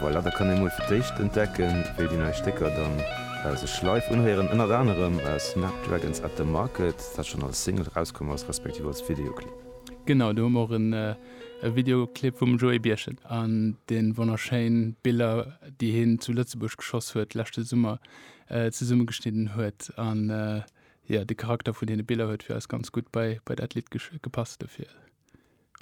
Voilà, da kann ee mol fir d'éischt entdecken, wéi déi nei Stécker dann sech live unhéieren. Ënnert anerem Snapdragons at the Market, dat schonn als Single erauskomm ass, respektiv als Videoclip. Genau, do hu mer och e Videoclip vum Joé Birchen an de wonnerschéin Biller, déi hien zu Lëtzebuerg geschoss huet leschte Summer, zesummegeschnidden huet. An jo, de Charakter vun deene Biller huet fir eis ganz gutt bei dat Lidd gepasst dofir.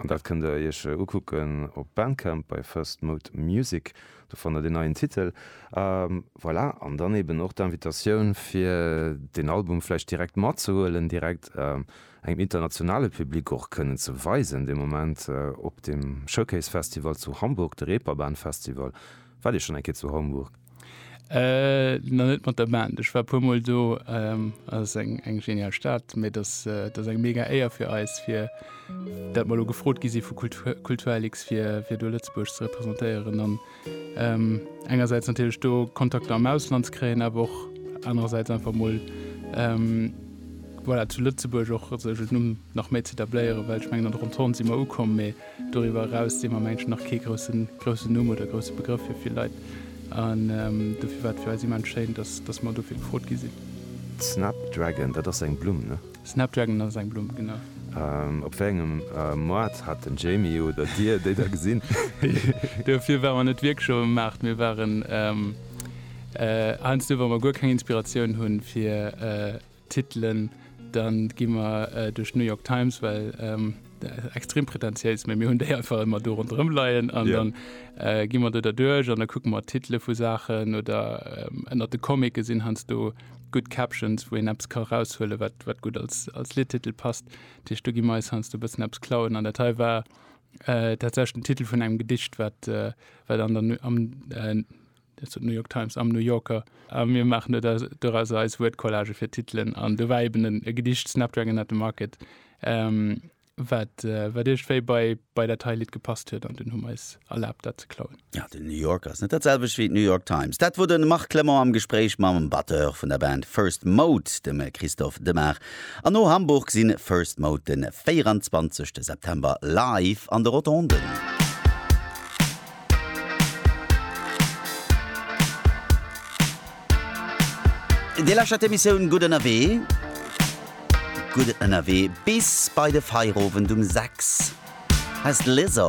An dat kënnt der iech ukucken op Bandcamp bei First Mode Music, do fannt der deen neien Titel. A voilà, an dann eben och d'Invitatioun fir deen Album vläicht direkt matzehuelen, direkt engem internationale Public och kënnen ze weisen dee Moment op dem Showcase Festival zu Hamburg, de Reeperbahn Festival. Waart Dir schonn eng Kéier zu Hamburg? Äh na net mat der Band. Ech war puer mol do. Ass eng eng genial Stad, mee dass dass eng mega Éier fir eis fir dat mer elo gefrot gi si vu Kultur Kulturlix fir fir do Lëtzebuerg ze representéieren an engersäits natierlech do Kontakter am Ausland ze kréien, awer och anerersäits einfach mol voilà zu Lëtzebuerg och sech en Numm nach méi z'etabléieren, well ech mengen an der Rotonde si mer ukomm. Doriwwer eraus sinn mer am Englischen nach kee groussen, groussen Numm oder grousse Begrëff fir vill Leit. An dofir war et fir eis immens schéin, dass, dass mer dofir gefrot gi sinn. Snapdragon, dat ass eng Blumm, ne? Snapdragon ass eng Blumm, genau. Op wéi engem Moart hat den Jamie oder Dir déi da gesinn? Dofir ware mer net wierklech op dem Maart. Mir waren heiansdo, wa mer guer keng Inspiratioun hunn, fir Titelen, dann gi mer duerch d'New York Times, well extrem pretentiéis, mä mir hunn déi einfach ëmmer do ronderëm leien an dann gi mer do derduerch an da kucke mer d'Titele vu Saachen oder ënnert de Comicke sinn heiansdo gutt Captions, wou een eppes ka eraushuelen, wat gutt als Lidtitel passt. Dat heescht, do gi mer eis heiansdo e bëssen eppes klauen an dat hei war tatsächlech den Titel vun engem Gedicht, wat am. Dat sot d'New York Times am New Yorker. A mir maachen do dorauser eis Wuertcollage fir d'Titelen. An do war eben en e Gedicht, Snapdragon at the Market, wat, wat iergendwéi bei, bei dat hei Lidd gepasst huet. An dunn hu mer eis erlaabt, dat ze klauen. Jo, den New Yorker ass net dat selwecht wéi d'New York Times. Dat wor de Marc Clement am Gespréich mam Batteur vun der Band First Mode, dem Christophe Demart. An no Hamburg si First Mode de 24 September live an de Rotonden. Dir lauschtert d'Emissioun Gutt Ënnerwee. Gutt Ënnerwee bis bei de Feierowend um 6. Hei ass d'Lizzo.